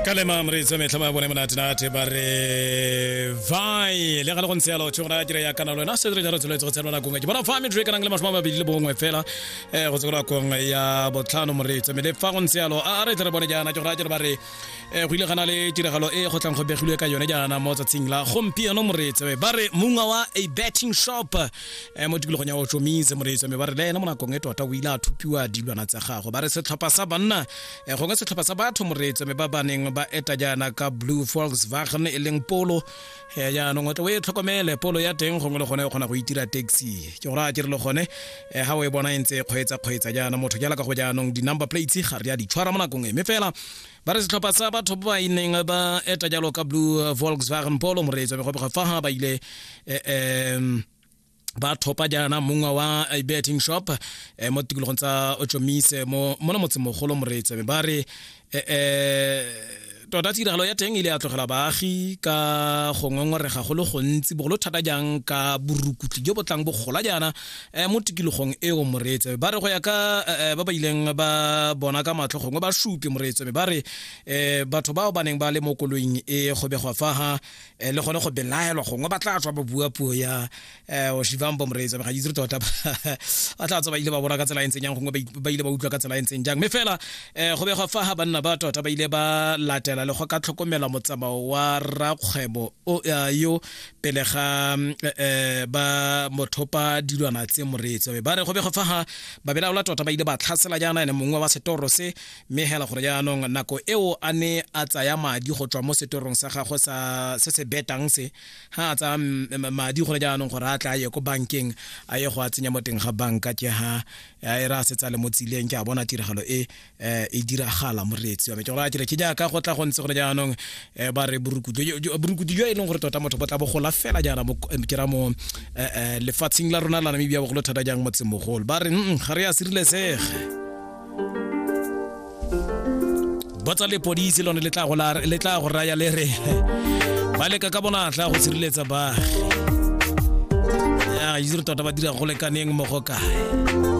ka lema moreitse metlha ba bone monatenate ba re vai le ga le go ntse yalo tšho gore a kry-a kana lona se re jalo tsholetse go tshelwa nakong e ke bona fa metro e kanang le masome a mabedi le bongwe fela um go tse go nakong ya botlhano moreitse mme le fa go ntse yalo a re tle re bone jaana ke gore a kere ba re um go ile gana le tiragalo e go tlang go begilwe ka yone jaana mo tsatsing la gompieno moreitse ba re mongwe wa a betting shop eh, mo tikologong ya ochomise moreetso mme ba re le ena mo nakong e tota o ile a thupiwa dilwana tsa gago ba re setlhopha sa banna eh, gongwe setlhopha sa batho moreetso mme ba ba neng ba eta jaana ka blue volkswagen e leng polo eh, jaanong o tle o e tlhokomele polo ya teng gongwe le gone e kgona go itira taxi ke gore a ke re le gone eh, ga o e bona e ntse e kgweetsa kgweetsa jaana motho ke alaka go jaanong di-number plates ga re a di tshwara mo nakong e mme fela ba re setlhopha sa batho ba ba ineng ba eta jalo ka blue volkswagen polo moreetsi wa megobega fa ga ba ile um ba thopa jaana mongwe wa betting shop eh, mo tikologong tsa ochomise mo mona motsemogolo moreetsi ba re eh, eh, tota tiragalo ya teng e ile ya tlogela baagi ka go ngongorega go le gontsi bogolo thata jang ka borukutli jo bo tlang bogola jaana um mo tikologong eo moreetsebe ba re go ya ka eh, ba ba ileng ba bona ka matlho gongwe ba supe moreetsebe ba re um batho bao ba neng ba le mo koloing e go begwa faga um le gone go belaelwa gongwe ba tla tswa ba bua puo ya um oshivambo moreetsebe ga itse tota ba tla tswa ba ile ba bona ka tsela e ntseng yang gongwe ba ile ba utlwa ka tsela e ntseng jang mme fela um go begwa faga banna ba tota ba ile ba latela le go ka tlhokomela motsamao wa rakgwebo yo pele ga eh, ba mothopa dilwana tse moreetsi be ba re go be go fa ga ba belaola tota ba ile ba tlhasela jaana ene mongwe wa setoro se mme hela gore jaanong nako eo a ne a tsaya madi go tswa mo setorong sa gagwe sa se se betang se ha a tsaya mm, mm, madi gore jaanong gore a tla a ye ko bankeng a ye go a tsenya mo teng ga banka ke ha a e re a setsa le mo tsileng ke a bona tiragalo e eh e diragala moreetsi wa me ke gore a dire ke jaaka go tla go ntse gone jaanong eh, ba re borukutu borukutu jo e leng gore tota motho bo tla bogola fela jaana mo eh, ke ra mo eh, eh, lefatsheng la rona la namibia bogolo thata jang motsemogolo ba re "Mm, ga re ya sirilesege botsa lepodisi lone le tla go la- le tla go raya le re ba leka ka bonatla go sireletsa baagi ya itse re tota ba dira go lekaneng mo go kae